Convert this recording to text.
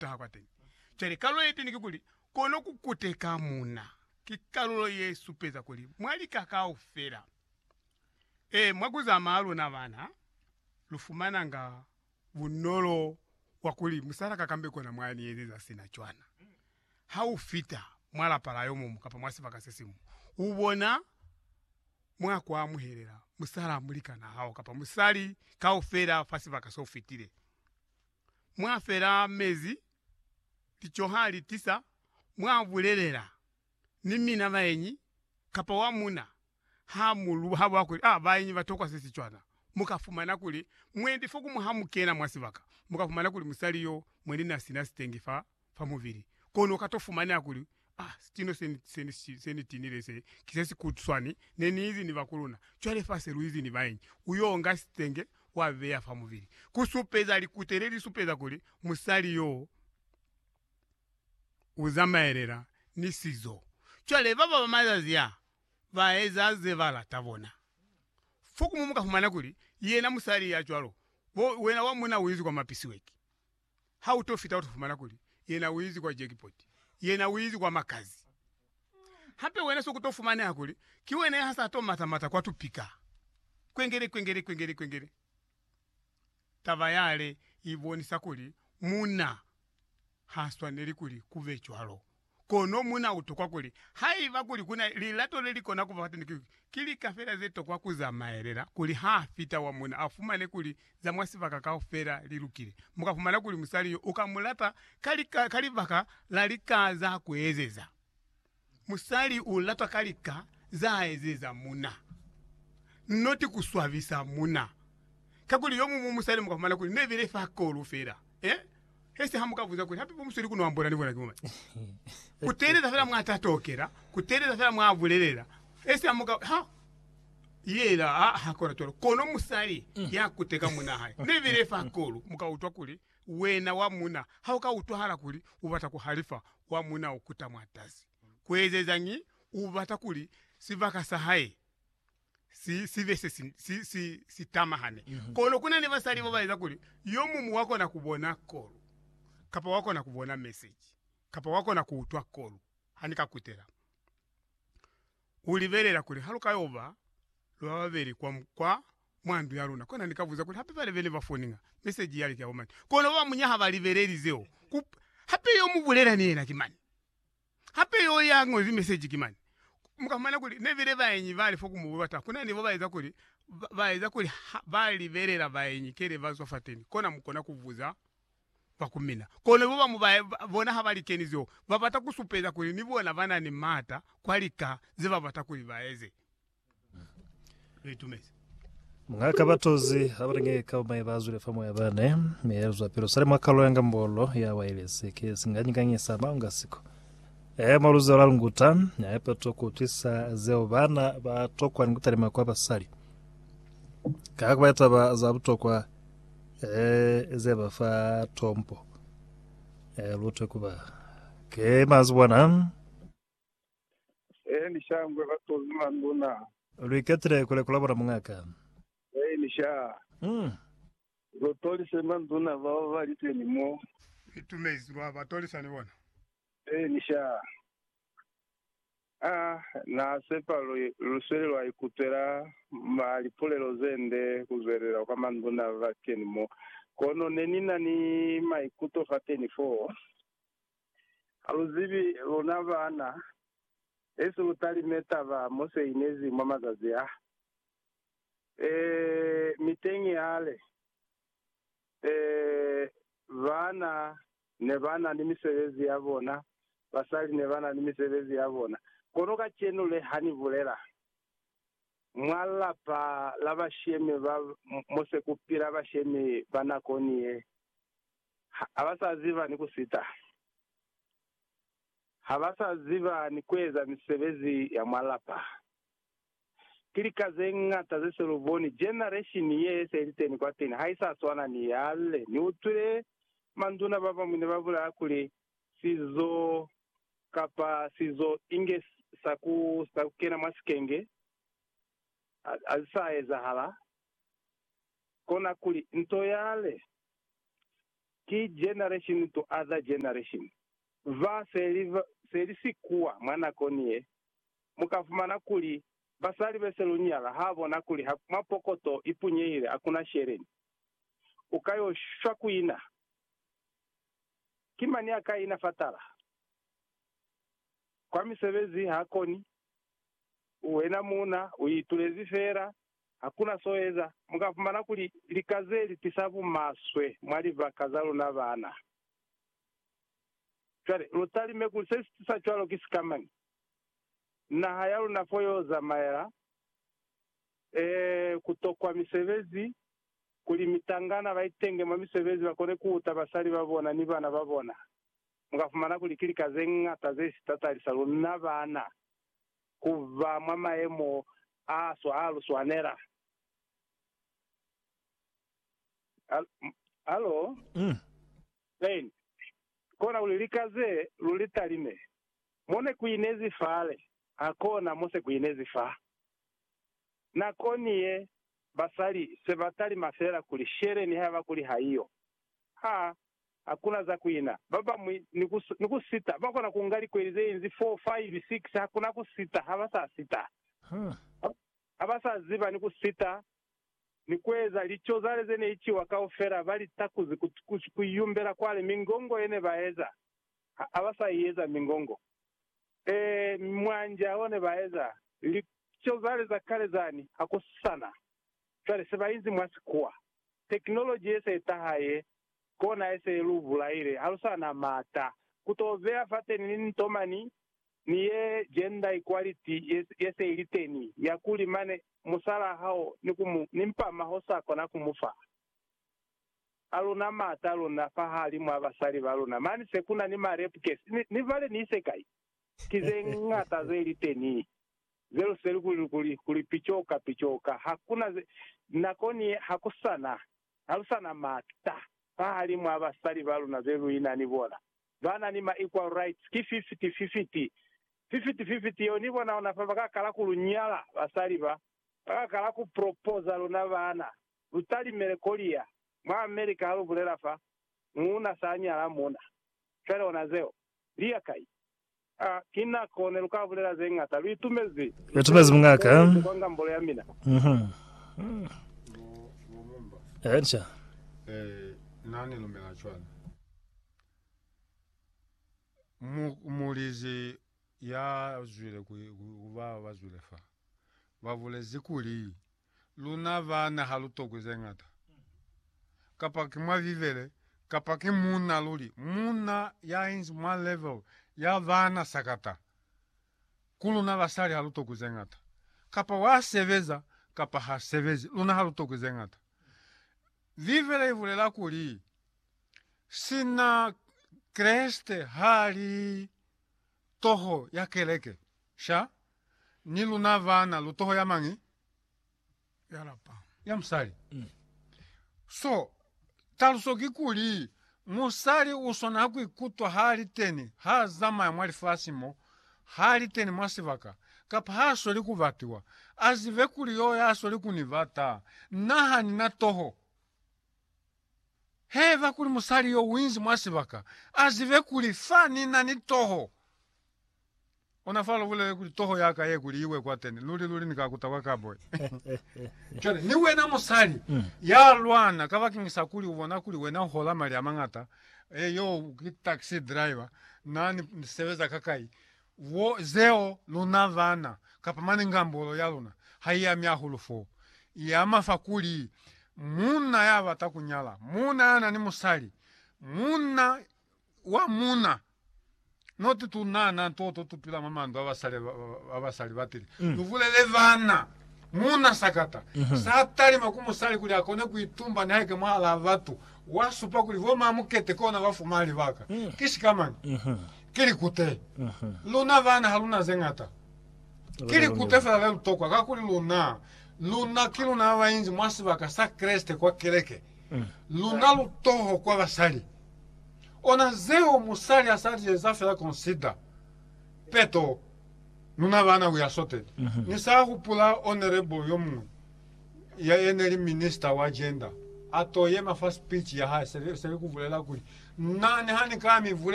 taha kwateñi. Cwale kalulo yeteñi kikuli, kono kukuteka muna. Ki kalulo yesupeza kuli mwa lika kaufela, ee, mwa kuzama haluna bana, lufumananga bunolo bwa kuli musalaka kambe kona mwani ezeza sina cwana. Haufita mwa lapa la yomuñwi kapa mwa sibaka sesiñwi, ubona mwa kuamuhelela musala mulikanahao kapa musali kaufela fa sibaka soufitile. mwa fela mezi, lico ha li tisa mwa bulelela ni mina baenyi kapa wa muna ha mu lu haba kuli, Ah, baenyi ba tokwa se si cwana. Mu ka fumana kuli mwendi fo ku mu ha mu kena mwa sibaka, mu ka fumana kuli musali yo mwendi na sina sitengi fa fa mubili, kono uka to fumaneha kuli, Ah, sitino se ni, se ni, se ni tinile se, ki se si kuswani ne ni izi ni ba kuluna. Cwale fa se lu izi ni baenyi, u yo nga sitenge, wa beya fa mubili. Ku supeza, likute le li supeza kuli musali yoo u zamaelela ni sizo. Cwale, ba baba mazazi a, ba eza ze ba lata bona. Fokumu mu ka fumana kuli, yena musali ya cwalo, bo, wena wa muna u inzi kwa mapisyueki. ha u to fita u to fumana kuli yena u izi kwa jackpot, yena u izi kwa makazi. Hape wena soku to fumaneha kuli ki wena ya sa to mata mata kwa tupika. Kwengele, kwengele, kwengele, kwengele. Taba yale i bonisa kuli muna ha swaneli kuli ku be cwalo. Kono mu na ku tokwa kuli, haiba kuli ku na lilato le li kona ku ba fateni, ki, ki lika fela ze tokwa ku zamaelela kuli ha fita wa muna a fumane kuli za mwa sibaka kaufela li lukile. Mu ka fumana kuli musali yo u ka mu lata ka lika ka libaka la lika za ku ezeza. Musali u latwa ka lika za ezeza muna, not ku swabisa muna. Kakuli yo muñwi musali mu ka fumana kuli ne bile fa kolu fela. Eh? Hesi ha muka buza kuli hape bo musweli kuno ambola ni bona ki mumani. Kutelela fela mwa tatokela, kutelela fela mwa bulelela. Hesi ha muka ha yela ha ha kona tolo. Kono musali mm. ya kuteka muna hae. Ne bile fa kolu muka utwa kuli wena wa muna ha uka utwahala kuli ubata kuhalifa wa muna ukuta mwa tazi. Kuezezangi ubata kuli sibaka sa hae si, si be se si, si, si, si tamahane. Kono ku na ni basali ba ba eza kuli yo mumu wa kona ku bona kolu, kapa wa kona ku bona meseji, kapa wa kona ku utwa kolu. Ha ni ka kutela, u libelela kuli ha lu ka yo ba lu ba babeli kwa, kwa, mwa ndu ya luna. Kono ni ka buza kuli, hape bale bene ba foninga, meseji yale ki ya bomani? Kono ba ba muñ'a ha ba libeleli zeo. Ku, hape yo mu bulela ni yena ki mani? Hape yo ya ñozi meseji ki mani. Mu ka fumana kuli ne bile baenyi ba li fo ku mubu ba taha. Ku na ni bo ba eza kuli, ba eza kuli ha ba libelela baenyi kele ba zwa fateni, kona mu kona ku buza ba ku mina. Kono bo bamu ba bona ha ba li keni zeo, ba bata ku supeza kuli ni bona ba na ni maata kwa lika ze ba bata kuli ba eze. Mwa kabatozi abalinge kaumai bazwile fa moya bane miyelezwa pilo sale mwa kalo ya ngambolo ya wailesi ke singanyikanyisa maunga siko e mwa luzelo la lunguta ya pato ku twisa zeo bana ba tokwa ni kutalima kwa basali ka kuba taba za butokwa e ze ba fa tompo e lutwe kuba ke mazibona Hei ni sha ngwe ba to zula nduna. Lu iketile kule kula bona muñ'a ka. Hei ni sha. Mm. Lu tolise manduna bao ba li teni mo. Itumezi lwa ba tolisa ni bona. Hei ni sha. Ah, na sepa lu, lu sweli lwa ikutwela ma lipulelo ze nde ku zwelela kwa manduna ba li teni mo. Kono ne ni na ni maikuto fateni foo. Ha lu zibi, luna baana besu lu talime taba mo se inezi mwa mazazi a? Ee, mi teñi hale. Ee, baana ne ba na ni misebezi ya bona, basali ne ba na ni misebezi ya bona. Kono kacenu le ha ni bulela mwa lapa la bashemi ba mo se ku pila bashemi ba nakoni ye, ha ba sa ziba ni ku sita, ha ba sa ziba ni ku eza misebezi ya mwa lapa. Ki lika ze ñata ze se lu boni. Generation ye se li teni kwateni ha i sa swana ni yale. Ni utwile manduna ba bañwi ne ba bulaya kuli, Sizo, kapa sizo inge sa ku, sa ku kena mwa sikenge, ha, ha si sa ezahala. Kona kuli, nto yale ki Generation to Other Generation. Ba se li se li sikuwa mwa nakoni ye, mu ka fumana kuli basali be se lu nyala ha bona kuli ha mwa pokoto i punyehile ha ku na sheleni. U ka yo shwa ku ina. Ki mañi a ka ina fatala? Kwa misebezi ha koni. Wena muuna u itulezi fela Hakuna so eza. Mu ka fumana kuli lika ze li tisa bumaswe mwa libaka za luna baana. Cwale, lu talime kuli se si tisa cwalo ki sikamañi? Naha ya luna fo yo zamaela, ee, ku tokwa misebezi, kuli mitangana ba itenge mwa misebezi ba kone ku uta basali ba bona ni bana ba bona. Mu ka fumana kuli ki lika ze ñata ze si tatalisa luna baana. ku ba mwa mayemo a swa a lu swanela. Halo? Mm. Amen. Kona kuli lika ze lu li talime, mo ne ku inezi fale, hakona mo se ku inezi fa. Nakoni ye, basali se ba talima fela kuli shele ni haiba kuli haiyo. Ha Hakuna za kuina. Babañwi ni ku, ni ku sita, ba kona ku nga likweli ze inzi four, five, six, hakuna ku sita, ha ba sa sita. Ha, ha ba sa ziba ni ku sita, ni kueza lico zale ze ne iciwa kaufela, ba li takuzi ku, ku, ku yumbela kwale, mingongo ye ne ba eza, ha, ha ba sa i eza mingongo. Ee, mwanja o ne ba eza, lico zale za kale zani, hakusana. Cwale se ba inzi mwa sikuwa. Technology ye se taha ye, kona ye se lu bulaile. Ha lu sa na mata. Ku to beya fateni linto mani, ni ye gender equality ye, ye se ili teni, ya kuli mane musalaa hao ni ku mu ni mpama ho sa kona ku mu fa. Ha lu na mata luna fahalimw'a basali ba luna. Mani se ku na ni ma rape case. Ni, ni vale ni ise kai? Ki ze ñata ze li teni. Zelu seli kuli lukuli kuli picoka picoka hakuna ze nako ni hakusana halusana mata fahalimu ha basali baluna be luina ni bona bana ni ma equal rights ki fifiti fifiti fifiti fifiti yeo ni bona ona fa baka kala ku lu nyala basali ba baka kala ku proposa luna bana lu talimele kolia mwa America halu bulela fa muuna sa nyala muna fela ona zeo lia kai Ha ki nako ne lu ka bulela ze ñata. Lu itumezi. Lu itumezi mung'a ka. Lu kwa ngambolo ya mina. Eca. Na ni lumela cwana. Mulizi ya zwile ku ba ba zwile fa, ba bulezi kuli. luna bana ha lu tokwi ze ñata. Kapa ki mwa Bibele, kapa ki muuna luli, muuna ya inzi mwa level ya bana sakata, ku luna basali ha lu tokwi ze ñata. Kapa wa sebeza, kapa ha sebezi, luna ha lu tokwi ze ñata. Bibele i bulela kuli, Sina Kreste ha li. Toho ya Keleke, sha, ni luna bana lu toho ya mañi? Ya lapa. Ya musali. So, taluso kikuli, musali u swanela ku ikutwa ha li teni, ha zamaya mwa lifasi mo, ha li teni mwa sibaka, kapa ha sweli ku batiwa, a zibe kuli yo ya sweli ku ni bata. Na ha ni na toho. Haiba kuli musali yo uinzi mwa sibaka, azibe kuli fa ni na ni toho. Ona fa lu bulele kuli, Toho ya ka ye kuli i we kwateni, luli-luli ni ka kuta kwa kaboi. Cwale, ni wena musali ya lwana kabakeñisa kuli u bona kuli wena u hola mali a mañata, e, yo ki taxi driver, na ni sebeza ka kai, Wo, zeo luna bana, kapa mane ngambolo ya luna, ha i ami ahulu fo. I ama fa kuli, munna ya bata ku nyala, munna ya na ni musali, munna wa muna, not tu nana ntoto tu pila mwa mandu a basali, a basali ba tili. Lu bulele bana, munna sakata, sa talima ku musali kuli a kone ku itumba ni haike mwahalaa batu, wa supa kuli bo mamukete kona ba fuma libaka. Ki sika mani. Ki likute. Luna bana ha lu na ze ñata. Ki likute fela le lu tokwa, kakuli luna, luna ki luna ba ba inzi mwa sibaka sa Kreste kwa keleke. Lu na lutoho kwa basali. Ona zeo musali a sa li eza fela consider. Peto, luna bana u ya sote. Ni sa hupula honorable yo muñwi, ya, ye ne li Minister wa Gender, a to yema fa speech ya hae, se li, se li ku bulela kuli, Na, niha ni ka mi bulela